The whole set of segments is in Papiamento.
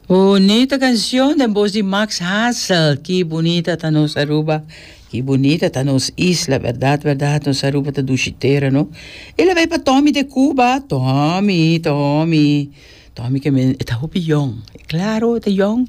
Bunita cancion den voz di Max Hassel Ki bunita ta nos Aruba Ki bunita ta nos isla Berdad berdad nos Aruba ta dushi tera no E la bay pa Tommy de Cuba Tommy Tommy Tommy ke men e ta hopi yong Claro e ta yong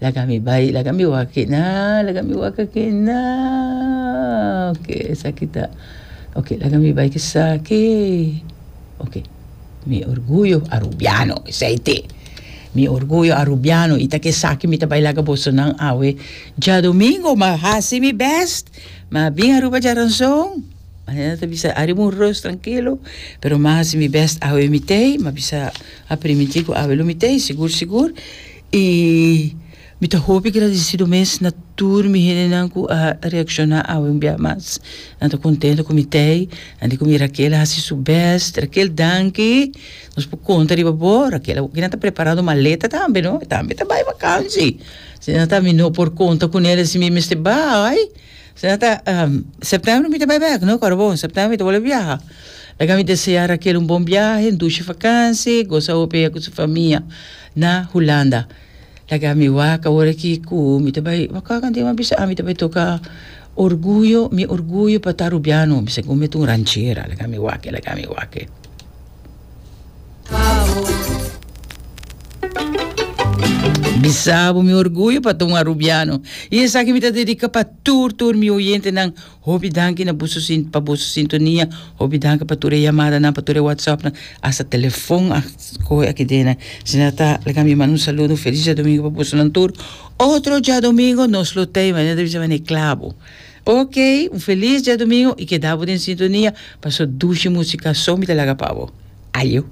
Laga mi bai, laga mi wak-ke na, laga mi wak-ke na, ok esaki ta, ok laga mi bai kesaki, ok mi orguyo arubiano esei te, mi orguyo arubiano i ta kesaki mi ta bai laga boso nan awe djadomingo ma hasi mi bèst, ma bin Aruba djaranson, manera ta bisa ariba un ròs trankilo, pero ma hasi mi bèst awe mi tei, ma bisa a primintí ku awe lo mi tei sigur sigur. I mi ta hopi gradisido mes na tur mi hendenan ku a reakshoná awe un bia mas. Nan ta kontento ku mi t'ei, nan di ku mi Raquel a hasi su bèst. Raquel, danki. Nos por konta riba bo, Raquel. Awor ki nan ta prepará nos maleta tambe, no? E tambe ta bai vakansi. Si nan ta mi no por konta ku Nelia si mi mester bai. Si nan ta, sèptèmber mi ta bai bèk, no Kòrobou? Sèptèmber mi ta bolbe biaha. Laga mi deseá Raquel un bon biahe, un dushi vakansi, gosa hopi ku su famia. Na Hulanda. Laga mi wak ora ki ku mi ta bai waka kante mi a bisa ami ta bai toka orguyo mi orguyo pa ta rubiano mi segun mi ta un ranchera laga mi wak laga mi wak. Bisabo mi orguyo pa ta un arubiano i esaki mi ta dedika pa tur tur mi oyentenan. Hopi danki na busu sin pa busu sintonia hopi danki pa tur e yamada nan pa tur e whatsapp nan hasta telefon a coge aki den nan si nan ta like mi manda un saludo un feliz diadomingo pa busu nan tur otro diadomingo nos lo tey mane nan ta bisa mane clavo ok un feliz diadomingo y keda bo den sintonia paso dushi musicason mi ta laga pa bo ayo.